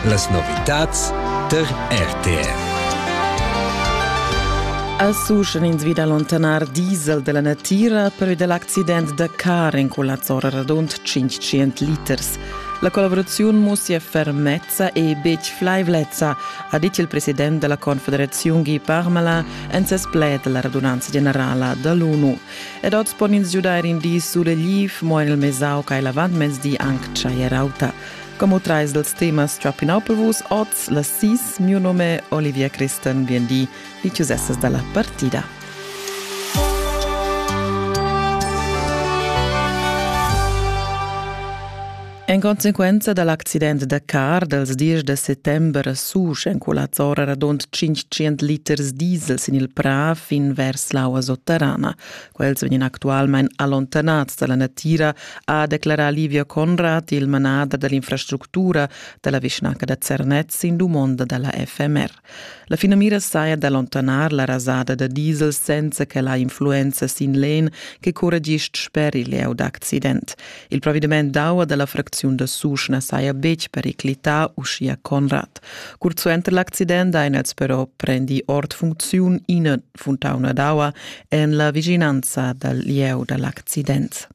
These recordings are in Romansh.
Las novitads tar RTR. As uschen ins vid allontanar diesel della natira per dell accident da car in culla zora radund 500 liters. La collaborazione mussia fermezza e betg flaivlezza, ha dit il president della Confederazione Guy Parmelin en ses pled della radunanza generala dall'ONU. Ed oz pon ins giudair in di sulegliv, mo en il Mesau ca l'avantmezdi anc tschaier auta. Como trais dels temas Trapping Up Vus oz la sis, mio nome Olivia Christen, bien di, vi ciusessas dalla partida. En conseguenza dal accident da car dals 10 da settember susch en Culazzora radund 500 liters diesel sin il Prà fin vers l'aua sotterrana. Quels vegnan actualmain allontanads dalla natira, ha declarà Livia Conrad, il manader dall'infrastructura dalla vischnanca da Zernez, sin dumonda dalla FMR. La finamira saja d'allontanar la rasada da diesel senza che la influenza sin l'en che curra gist sper il lieu d'accident. Il provediment d'aua da la fracziun da Susch na saja betg periclità, uschia Conrad. Curt suenter l'accident han els però prendi ord funcziun ina funtauna d'aua en la vischinanza dal lieu da l'accident.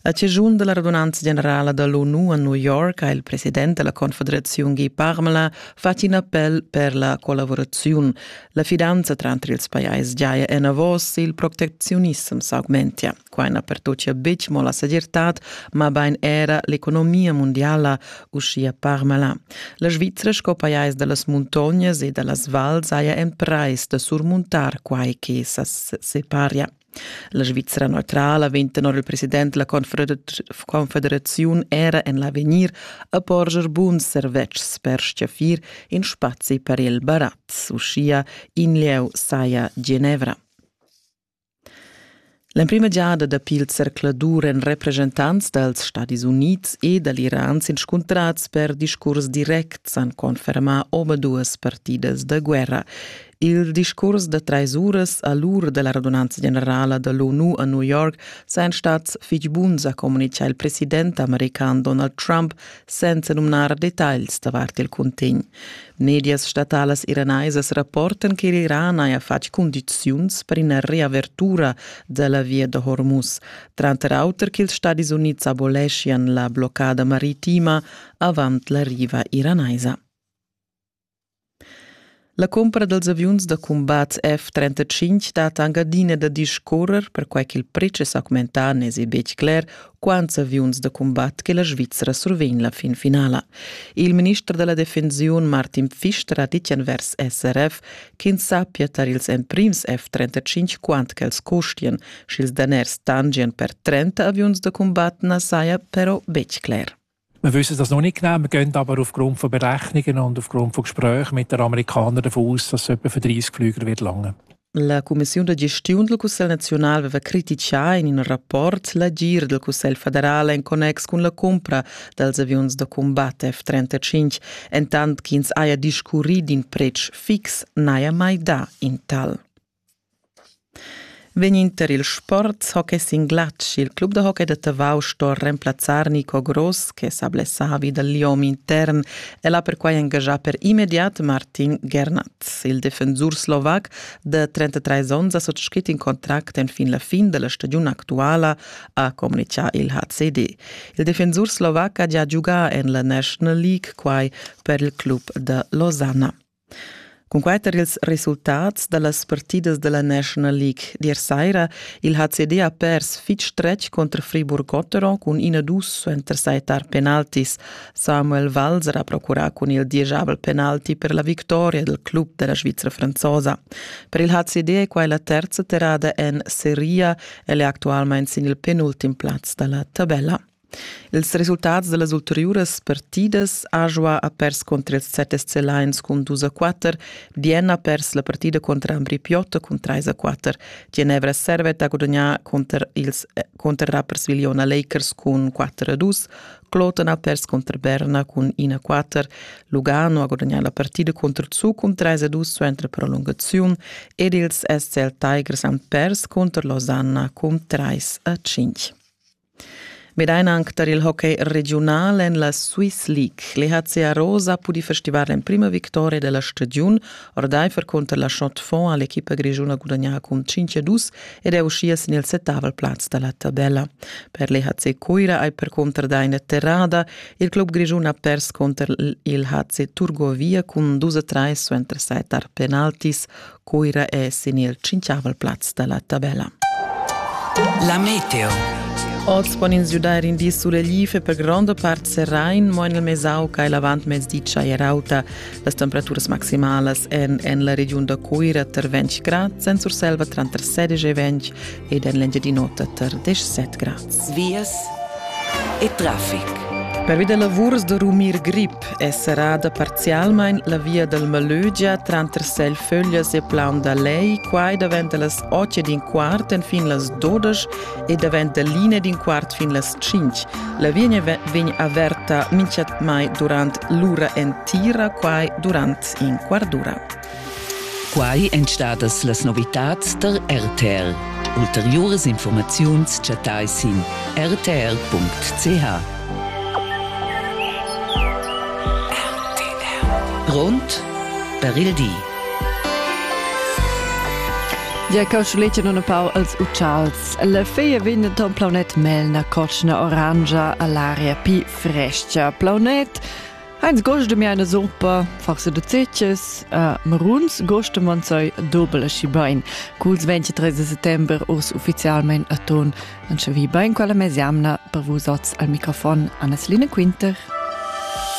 A chaschun da la radunanza generala da l'ONU a New York ha il president da la Confederaziun Guy Parmelin fatg in appel per la collavuraziun. La fidanza tranter ils pajais giaja enavos, il protecziunissem s'augmentia. Quai na pertochia betg mo la segirtad, mabain era l'economia mundiala, uschia Parmelin. La Svizra sco pajais da las muntognas e da las vals haja emprais da surmuntar quai che sa separia. La Svizra neutrala vegn tenor il president della confederaziun era en l'avegnir a porscher buns servetschs per stgaffir in spazi per il barat, uschia in lieu saja Genevra. L'emprima giada dapi il zercladur en representants dals Stadis Unids e dall'Iran s'inscuntrads per discurs directs han confermà omaduas partidas da guerra. Il discurs da trais uras a l'ura da la radunanza generala da l'ONU a New York sajan stats fitg buns, ha communitgà il president american Donald Trump senza numnar detagls davart il cuntegn. Medias statalas iranaisas rapportan che l'Iran haja fatg cundiziuns per ina riavertura da la via da Hormuz, tranter auter ch'ils Stadis Unids aboleschian la bloccada maritima avant la riva iranaisa. La cumpra dals aviuns da cumbat F-35 dat anc adina da discurrer, perquai ch'il pretsch è s'augmentà, n'èsi betg cler quants aviuns da cumbat che la Svizra survegn la fin finala. Il minister da la defensiun Martin Pfister ha ditg envers SRF ch'ins sappia tar ils emprims F-35 quant ch'els costian, sch'ils daners tangian per 30 aviuns da cumbat na saja però betg cler. Wir wissen das noch nicht genau. Wir gehen aber aufgrund von Berechnungen und aufgrund von Gesprächen mit den Amerikanern davon aus, dass es etwa für 30 Flüger wird lange. La Commissione de Gestione del Consiglio Nazionale aveva criticà in un rapport l'agir del Consiglio federale in connex con la compra dels avions da combatte F-35, entant ch'ins haja discurrì d'in pretsch fix n'haja mai dà in tal. Vegninter ils sports hockey sin glatsch. Il club da hockey da Tavau sto remplazzar Nico Gross che s'ha blessavi dal liom intern. El ha perquai engagià per immediat Martin Gernatz. Il defensur slovac da 33 onns ha sottschet in contract enfin la fin da la stagiun actuala, ha communitgà il HCD. Il defensur slovac ha gia giugà en la National League quai per il club da Losanna. Cunquai tar ils resultats da las partidas da la National League d'ier saira il HCD ha pers fitg stretg cunter Friburg-Gotteron cun ina dus suenter sai tar penaltis. Samuel Walser ha procurà cun il dieschavel penalti per la victoria del club della Svizra franzosa. Per il HCD è quai la terza terrada en Serie. El è actualmain sin il penultim plaz da la tabella. Ils resultats dallas ulteriuras partidas Ajoa ha pers contri ils set SC Lions cun dus a quatter, Bien ha pers la partida contra Ambri Piotta cun treis a quatter, Genevra Servet ha gudagnà cunter, ils, eh, cunter Rapperswil-Jona Lakers cun quatter a dus, Kloten ha pers contra Berna cun in a quatter, Lugano ha gudagnà la partida contro Zug cun treis a dus suenter prolungaziun ed ils SCL Tigers han pers contro Losanna cun treis a cinq. Vedein anc tar il hockey regiunal en la Swiss League. L'EHC Arosa ha pudì festivar l'emprima victoria della stagiun ordaifer conter la Chaux-de-Fonds ha l'equipa grischuna gudagnà cun 5-2 ed è uschia sin il settavel plaz da la tabella. Per l'EHC Cuira hai perconter dà ina terrada. Il club grischun ha pers conter il HC Turgovia cun 2-3 suenter set penaltis. Cuira è sin il cinquiavel plaz da la tabella. La meteo. Oz pon ins giudair in di sulegl e per gronda part serrain, mo en il Mesau ca è l'avantmezdi tschai rauta. Las temperaturas maximalas èn en la regiun da Cuira tar 20 grad, Sensurselva tranter 16 e 20 ed en l'Engiadin'Ota tar 17 grads. Vias e traffic. Pervi da lavurs da rumir grip è serrada parzialmain la via dal Malögia tranter Selföglias e Plaun da Lei, quai davent da las 8 ed in quart enfin las 12 e davent da l'ina ed in quart fin las 5. La via vegn averta mintgatmai durant l'ura entira, quai durant in quart d'ura. Quai èn stadas las novitads tar RTR. Ulteriuras informaziuns chattai sin rtr.ch. Grond per il di. Ja coschuletje non pau als uccials. La feia vin ton plaunet melna coschna oranja all'aria pi frescia. Plaunet Heinz gochte mir eine Suppe, forse du Zitches, a Maruns gochte man sei dobel aschi bein. Culs 23 settember urs ufficialmein a ton anche vi bein quella mesiamna per vus oz al microfon Anna-Celine Quinter.